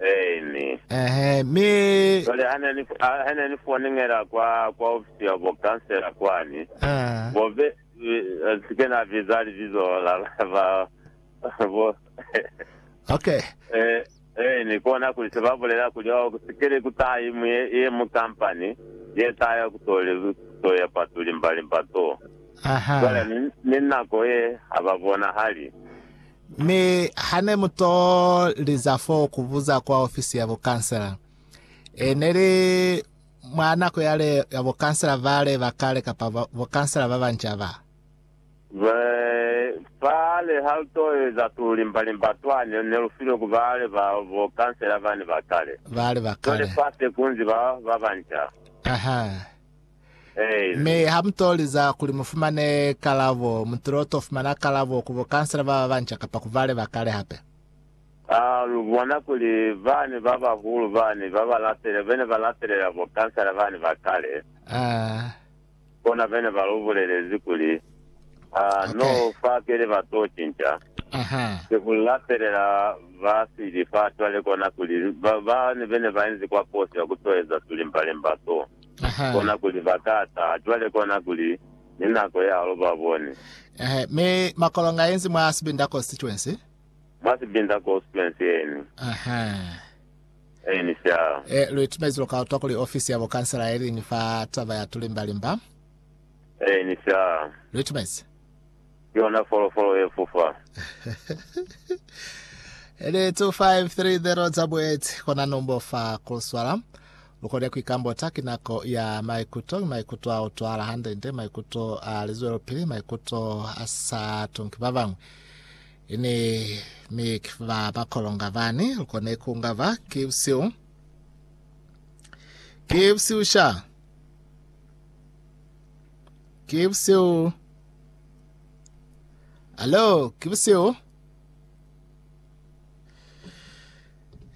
Amen. Eehe, mi. Cwale ha ne ni, ha, ha ne ni fonengela kwa, kwa ofisi ya bo kansela kwani, Ah. bo be, eh, si ke na biza libizo la ba, ba, bo, Okay. eh, eh, ni kona kuli se ba bulela kuli, oh, ku sikele ku taha ye, mu- ye, ye mu kampani, ye taha ya ku to, le- to ya patu limba limba to. Aha. Cwale ni, ni nako ye ha ba bonahali. Mi hane mu to liza fo ku buza kwa ofisi ya bo kansela, e ne li mwa nako yale ya bo kansela bale ba kale kapa bo kansela ba banca ba. Ba fa le ha lu to eza tu limba limba twa ne ne lu filwe ku bale ba bo kansela bane ba kale. Bale ba kale. Cwale fa se kunzi ba ba banca. Aha. Mi ha mu to liza kuli mu fumane kalabo, mu tilo to fumana kalabo ku bo kansela ba ba banca kapa ku bale ba kale hape. Ha lu bona kuli bani ba bahulu bani ba ba lapele, bene ba lapelela bo kansela bani ba kale, kona bene ba lu bulelezi kuli, Ha no fa pili ba to cinca, ki ku lapelela ba sili fa cwale kona kuli bani bene ba inzi kwa kosi ya ku to eza tulimbalimba to. kona kuli ba ka taha cwale kona kuli ni nako ya halo ba bone. Mi makolonga yenzi mwa sibinda constituency? Mwa sibinda constituency yeni? Yeni sha. E, lu itumezi lu ka utwa kuli ofisi ya bukansela yeliñwi fa taba ya tulimbalimba. Yeni sha. Lu itumezi. Ki yona folofolo ye fufa. Eli 2530 za bueti kona nombo fa Kruswala. Lukole kuikambota ki nako ya maikuto, mi maikuto a utwala hande-nde, maikuto a lizwelopili, maikuto a sa tunki ba bañwi. Ini mi ki ba ba kolonga bani? Lukone ku ngaba ki busihu, ki busihu sha, ki busihu. Alo, ki busihu.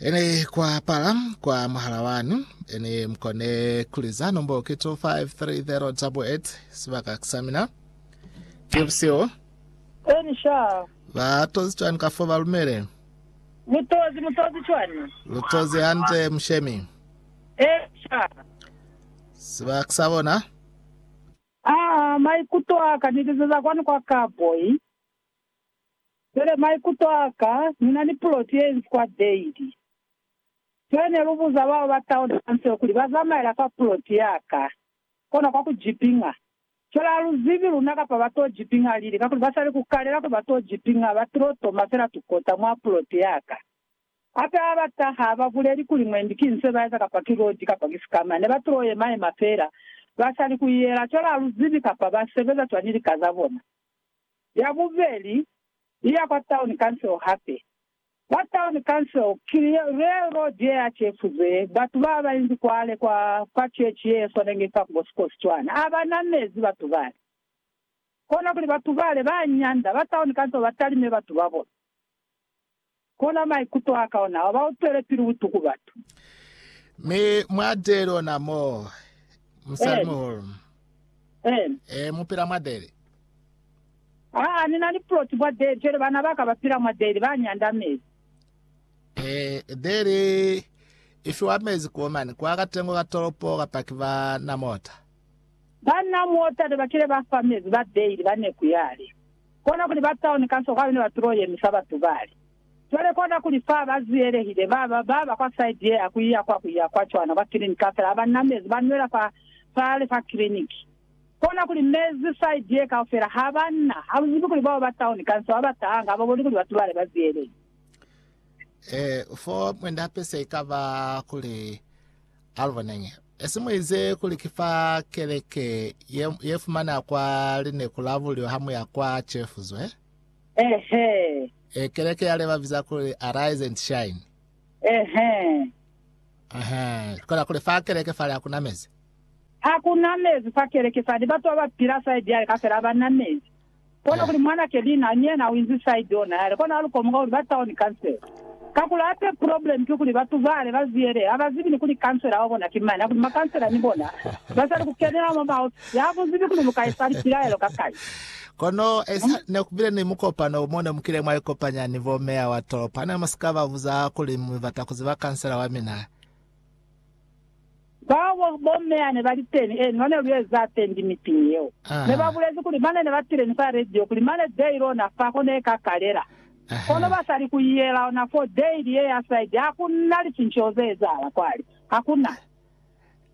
Ene kwa pala kwa muhala wanu, ene mkone kuliza nombolo ki 253088 sibaka kisamina. Ki busihu. Eni sha. Ba tozi cwani ka fo ba lumele? Mutozi, mutozi cwani? Lu tozi hande mushemi. E sha. Siba kisa bona? Aa, maikuto aka ni lizeza kwanu kwa Karboy. Pele maikuto a ka, ni na ni puloti ye inzi kwa Dade. Pele ne lu buza bao ba taona kanseo kuli ba zamaela kwa puloti ya ka, kona kwa ku jipinga. Fela ha lu zibi luna kapa ba to jipinga lili, kakuli ba sa li ku kalela kuli ba to jipinga, ba tilo toma fela tukota mwa puloti ya ka. Hape ha ba taha, ha ba buleli kuli mwendi ki nso ye ba eza kapa ki loji kapa ki sikama. Ne ba tilo yema-yema fela, ba sa li ku iyela. Cwale ha lu zibi kapa ba sebeza cwañi lika za bona. ya bubeli i ya kwa Town Council hape. Kwa Town Council ki railroad ye ya cefuze batu ba ba inzi kwale kwa kwa church ye swanenge fa ku Bosikosi cwana. A ba namezi batu bale. Kona kuli batu bale ba nyanda ba Town Council ba talime batu ba bona. Kona maikuto aka ona wa ba utwelapili butuku batu. Mi mwa deli ona mo, musalimuhulu. Ee, mu pila mwa deli. Aa, ni na ni ploti mwa deli, cwale bana ba ka ba pila mwa deli, ba nyanda mezi. Ee, deli i fiwa mezi kuo mane, kwa katengo ka tolopo, kapa ki ba na mota. Ba na mota ne ba kile ba fa mezi ba deli ba neku yale. Kona kuli ba tauni kanso kwabene ba tulo ye misa ba tubale. Cwale kona kuli fa ba ziyelehile, ba ba ba ba kwa side ye ya ku iya kwa ku iya kwa cwana kwa clinic kafela ha ba na mezi, ba nwela fa fale fa clinic. Kona kuli mezi side ye kaufela ha ba na. Ha lu zibi kuli bao ba tauni kanso ha ba tahanga, ha ba boni kuli ba tubale ba ziyelehile. E, fo mwe nda pesa ikaba kuli, aluboneñi, Esi muize kuli ki fa keleke ye, ye fumana kwa lineku la bulyo ha muya kwa Chefuzwe? Ehe. E, keleke yale babiza kuli Arise and Shine. Ehe. Ehe. Kola kuli fa keleke fale hakuna mezi. Hakuna mezi fa keleke fale, ni batu baba pila saidi yale kafela abanna mezi. Kono kuli mwan'a Kelina ni yena u inzi side ona yale kono alu komoka kuli ba town council. Kakuli hape problem ki kuli batu bale ba ziyele ha ba zibi ni kuli councilor wa bona ki mani hakuli ma councilor ni bona ba sali ku kenela mwa maofisi ha bu zibi kuli lu ka esa lipilaelo kakali. Kono esa ne ku bile ni mukopano mo ne mu kile mwa ikopanya ni bo mayor wa tolopo. Ha ne mu si ka ba buza kuli mu bata ku ziba councilor wa mina, Kwabo, bomme yane bali teni eni mane lu eza tendi mipini yeo. Ne ba bulezi kuli mane ne ba tile ni fa radio kuli mane daily ona fa ko ne ka kalela. Kono ba sali ku iyela ona fo daily ye ya side ha ku na licinceho ze ezahala kwale. Ha ku na.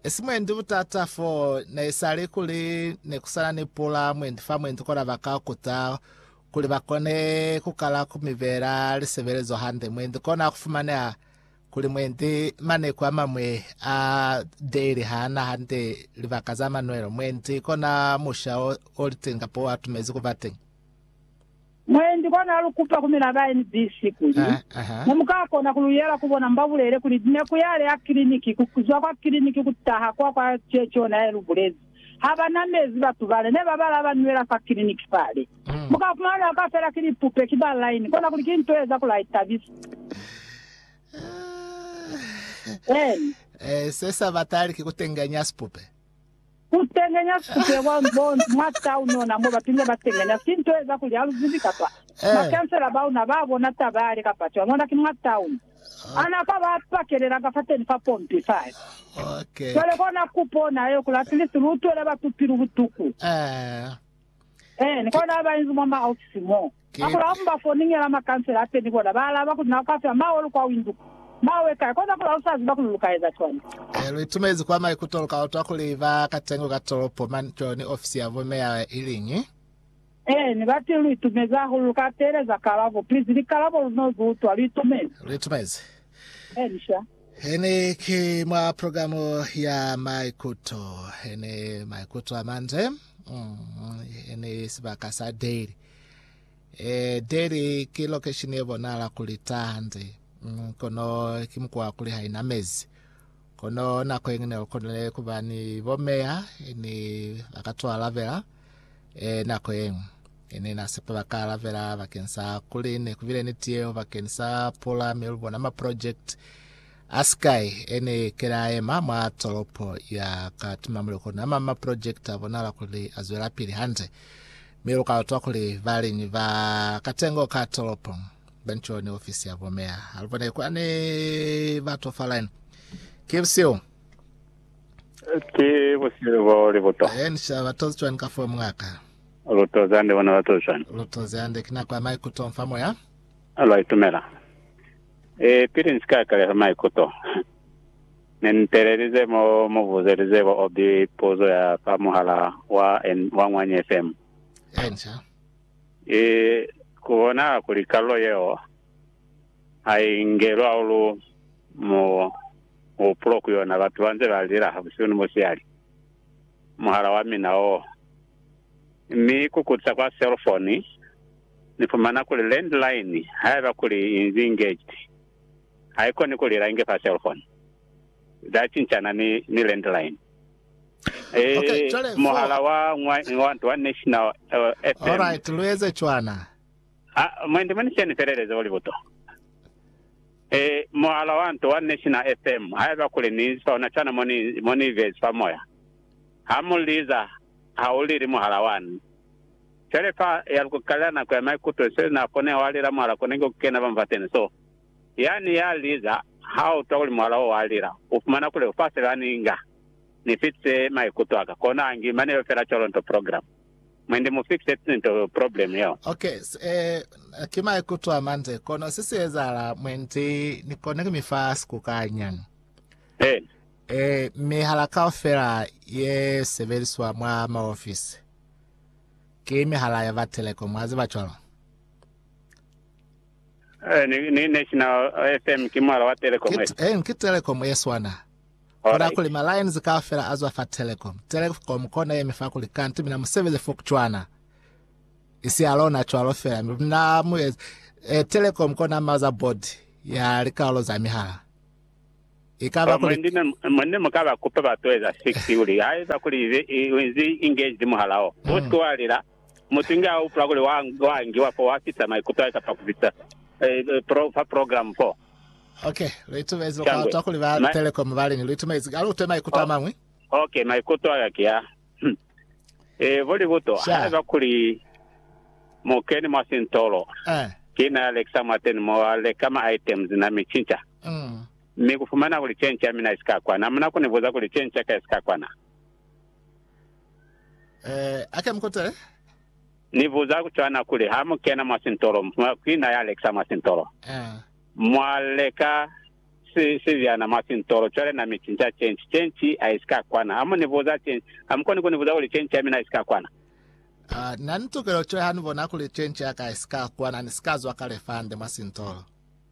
Si mwendi butata fo ne isali kuli ne ku sana ni pula mwendi fa mwendi kona ba ka kuta kuli ba kone ku kala ku mi bela lisebelezo hande mwendi kona ku fumaneha Kuli mwendi maneko amamwe a daily haana hande libaka za manwelo, mwendi kona musha oliteni kapa oatumezi kuba teni. Mwendi kona alukupa ku mina ba NBC kuli, Ah, aha. Ne mukakona kuluyela ku bona mbabulele kuli neku yale ya kiliniki, kuzwa kwa kiliniki kutaha kwa kwa Ceci ona yaelubulezi. ha ba na mezi batu bale ne ba bala ba nwela fa kiliniki fale. Mu ka fumana nako a fela ki lipupe, ki ba line, kona kuli ki nto ye eza kuli a itabisa. Eeni. Eh, se sa batali ki ku tengenya sipupe. Ku tengenya sipupe kwa bo, mwa town ona mo batu ne ba tengenya, ki nto ye eza kuli, ha lu zibi, kapa, eh. Makansela ba una ba bona taba yale kapa cwani, ona ki mwa town. A na ka ba pakelela ka fateni fa pompi fale. Cwale kona kupo na yeo kuli atilisi lu utwele batu pilu butuku. Eeni, kona ha ba inzi mwa maofisi mo. A kuli ha mu ba foningela makansela ateni bona ba alaba kuli, Na ka fya mawe lu kwa windu ko. Mawe kai? Kona kuli ha lu sa ziba kuli lu ka eza cwañi. Ee, lu itumezi kwa maikuto lu ka utwa kuli ba katengo ka tolopo mani cwalo ni ofisi ya bo meya iliñi. Ee, ni bati lu itumezi hahulu. Lu ka teeleza kalabo, please. Likalabo lu no zu utwa. Lu itumezi? Lu itumezi. Ee, ni sha. Hene ki mwa programo ya maikuto. Hene maikuto a mande. Mm, hene sibaka sa Daily. Eh, Daily ki location ye bonahala kuli ta hande. Mm, kono ki mukwa kuli ha ina mezi. Kono nako yengine lukonile kuba ni bomeya, ni bakatwalabela. e, nako yeñwi ne na sepa ba ka alabela bakeng sa kuli ne kubile ni tiyeo bakeng sa pula, mi lubona ma project a sky ene kela ema mwa tolopo ya katima muli kona ama ma project a bonala kuli a zwela pili hande mi lu ka utwa kuli baliñi ba katengo ka tolopo bencho ni ofisi ya bomea halubone kwane batofalani kibsio Ki busilu bo li buto. Aye ni shaba batozi cwani ka fo mwa ka? Lu tozi hande bona batozi cwani? Lu tozi hande. Ki nako ya maikuto mfa moya. Lwa itumela. E, pili ni si ka kaleza maikuto, Ne ni telelize mo mu buzelize bo Obi puzo ya fa muhala wa, wa Ñwanyi FM. Enca. E, ku bonahala kuli kalulo yeo ha i ngelwa ulu mu. Ku pulo ku yona, batu ba nze ba lila ha busihu ni musihali. Muhala wa mina o mi ku kutisa kwa cell phone, ni fumana kuli landline, haiba kuli i nzi engaged, ha i koni ku lila inge fa cell phone. Za cincana ni, ni landline. Ee, muhala wa, wa, wa national FM. Alright, lu eze cwana. Ha mwa ndi moni sheni feleleza wa libuto e muhala wa nto wa National FM haiba kuli ni sona shana mo ni mo ni bezi fa moya ha mu liza ha u lili muhala wani fele fa ya lu kukalela nako ya maikuto se na kone wa lila muhala kone ku kena ba mfateni so yani ya liza ha u twa kuli muhala o wa lila u fumana kuli u fa se ba ni nga ni fitise maikuto aka kona ngi mane yo fela colo nto program. Mwende mu fixed sinto problem yeo. Ok se ki maikuto a mande kono se si ezahala mwendi ni kone ku mi fa sikukanya. Eh. Eh, mihala kaufela ye sebeliswa mwa maofisi ki mihala ya ba telecom, wa ziba cwalo. Eh, ni, ni National FM ki muhala wa telecom. Ki, eh, ki telecom ye swana. Koda kuli ma lines kaufela azwa fa telecom, telecom kona yemi fa kuli kanti mina musebezi fo kucwana isi ya lona cwalo fela mi mina mu e, e telecom kona maza board ya likalolo za mihala ikaba kuli ndine mwanne mukaba kupa ba toeza 6 kuli haiba kuli inzi engaged muhala o mm. uske wa lila mutu nge a upula kuli wa wa ngiwa fo wa fisa maikuto a kapa kufisa eh, eh, pro, fa program fo Okay, lu itumezi lu kwatwa kuli ba Ma- Telecom ba lini lu itumezi ka lu twe maikuto a mañwi. Okay, maikuto aka ki a. Hmm. Eh, bo libuto, Sha. haiba kuli mu keni mwa sintolo, Eh. ki na ya lekisa mwa teni mo a leka ma items na mi cinca. Mm. Mi ku fumana kuli change ya mina i sika kwana. Muna ku ni buza kuli change ya ka i sika kwana. Eh, ake mukutele. Ni buza ku cwana kuli, Ha mu kena mwa sintolo, mwa ku ina ya lekisa mwa sintolo. Mwa leka si, sibyana mwa sintolo, cwale na mi cinca cenci. Cenci a isi ka kwana. Ha mu ni buza cenci, ha mu koni ku ni buza kuli cenci ya mina isi ka kwana. A na ni tukelo, cwale ha ni bona kuli cenci ya ka isi ka kwana, ni si ka zwa kale fande mwa sintolo.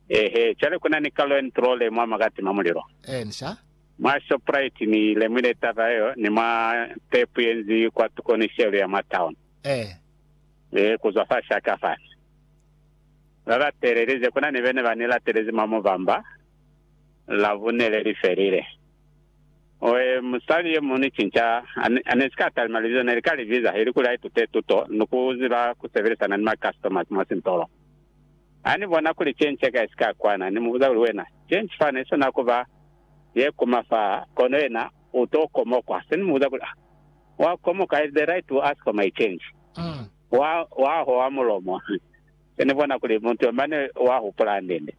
Eehe. Cwale kuna ni kalo ye ni tulole mwa makatima mulilo. Eensha. Mwa Shoprite ni lemwile taba yeo ni mwa tepu ye nzi kwa tuko ni shelu ya mwa town. Eh. Eh, ku zwa fa shaka fani. Ba ba teelelize, ku na ni bene ba ni latelezi mwa mubamba, Labune le li felile. Oh, eh, musali ye muñwi ni cinca, a, a ne si ka talima libizo ne li ka li biza, ili kuli a itute tuto ni ku ziba ku sebelisana ni ma customers mwa sintolo. Ha ni bona kuli ki nce kai si ka kwana, ni mu buza kuli, Wena, ki nci fani sona ku ba ye kuma fa, kono yena u to komokwa? Se ni mu buza kuli, Ah, wa komoka, is the right to ask for my change? Wa, wa hoha mulomo. Se ni bona kuli mutu yo mane wa hupula hande-nde.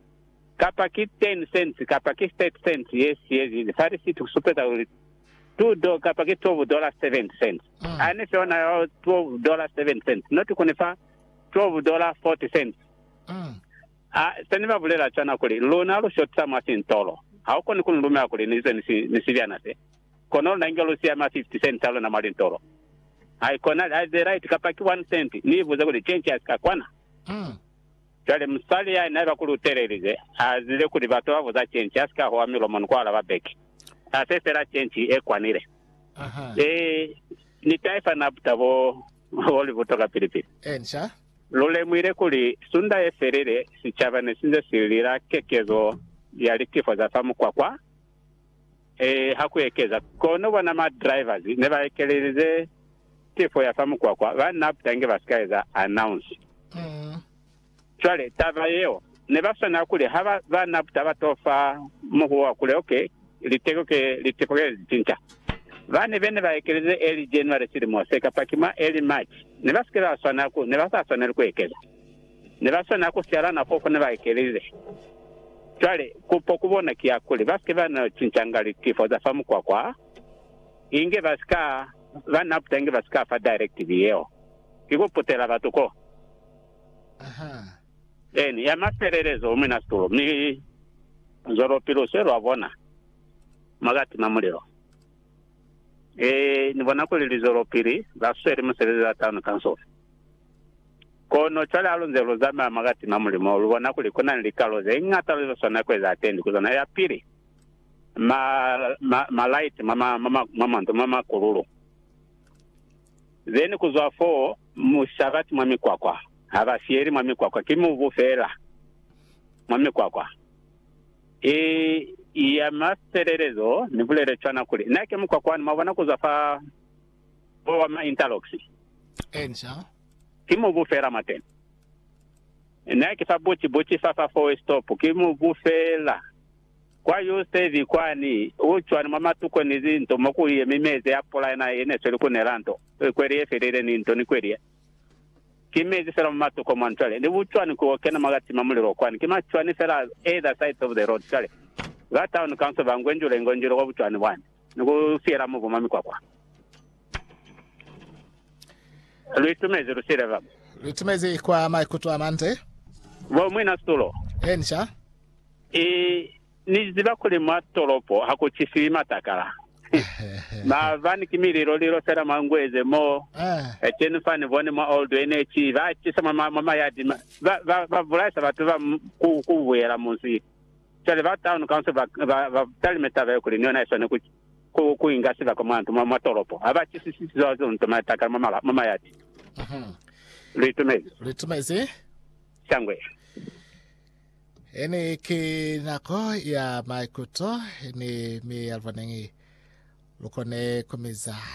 Kapa ki ten cents, kapa ki thirty cents ye siyezize fa risiti ku supeza kuli two do, kapa ki twelve dollar seventy cents. Ha ni fe ona yo twelve dollar seventy cents, not ku ni fa. 12 dollar 40 cents. Ha se ni ba bulela cwana kuli, Luna lu shotisa mwa sintolo, ha u koni ku ni lumela kuli ni ze ni sibyana se. Kono luna inge lu siya ma 50 cents a luna mwa lintolo. Ha i konali, ha i ze right kapa ki one cent, ni i buze kuli change ya si ka kwana. Cwale musali ya ne ba ku lutelelize a zile kuli batu ba buza change ya si ka hwa milomo ni ku alaba back. Ha se fela change e kwanile. Ee, ni taifa nabta bo. Wo li buta kapili-pili. Encia. Lu lemuhile kuli sunda ye felile sicaba ne si nze si lila kekezo ya litifo za fa mukwakwa. Ee, ha ku ekeza. Kono bona ma drivers ne ba ekelelize tifo ya fa mukwakwa, banna abut'a inge ba si ka eza announce. Cwale, taba yeo, ne ba swanela kuli ha ba, ba na taba to fa muhuwo wa kule, ok, liteko ke, liteko ke li cinca. Bane be ne ba ekeleze early January silimo se, kapa ki mwa early March, ne ba si ke ba swanela ku, ne ba sa swaneli ku ekeza. Ne ba swanela ku siala nako fo ne ba ekelize. Cwale, kupo ku bona ki ya kuli ba si ke ba no cincanga litifo za fa mukwakwa, inge ba si ka, ba na puta inge ba si ka fa directive yeo. Ki ku putela batu ko. Eni, ya mafelelezo u mina situlo, mi zwalopi lu swe lwa bona mwa ka tima mulilo. E, Ni bona kuli li zwelopili, ba sweli musebezi wa taunu kansofela. Kono cwale ha lu nze lu zamaya mwa ka tima mulilo mo, lu bona kuli ku na ni likalo ze ñata lu swanela ku eza atendi ku zona. Ya pili, ma, ma, malaiti mwa ma, mwa ma, mwa mandu, mwa makululu. Then kuzwa foo musabati mwa mikwakwa, habasiyeli mwa mikwakwa, ki mubu feela mwa mikwakwa. I, i ya mafelelezo, nibulele cwana kuli, Na ki mukwakwa wani, mwabona, kuzwa fa, foo wa ma interlocks. Amen, sir. Ki mubu feela mwateni. Na ki fa buti, buti fa, fa four-way stop, ki mubu feela Kwa Eusebi kwani, u cwani mwa matuko ni linto mo ku yemi mezi a pula yena ye ne sweli ku nela nto, kweli ye felile ni nto ni kweli ye. Ki mezi fela mwa matuko mwani cwale. Ni bucwani ku o kena mwa ka tima mulilo kwani. Ki macwani fela either sides of the road cwale. Ba town council ba ngwenjule ngwenjule kwa bucwani bwani. ni ku siyela mubu mwa mikwakwa. Lu itumezi lu siyile ba. Lu itumezi kwa maikuto a mande. Bo mwina situlo. Enca. I, ni ziba kuli mwa tolopo ha ku cisiwi matakala. Maabani ki mililo lilo fela mwa Ngweze mo. Eh. Eceni fa ni boni mwa Old NH, ba cisa mwa, mwa, mwa mayadi, ba, ba, ba bulaisa batu ba ku, ku buyela munzi. Cwale ba Town Council ba, ba, ba talime taba ye kuli ni yona iswane ku, ku, ku inga sibaka mwa ntu, mwa, mwa tolopo. Ha ba chisisisi zwa zino nto matakala mwa, mala, mwa mayati. Mhm. Lu itumezi? Lu itumezi? Shangwe. Ene ki nako ya maikuto, ni, mi alubonengi lukone kumiza.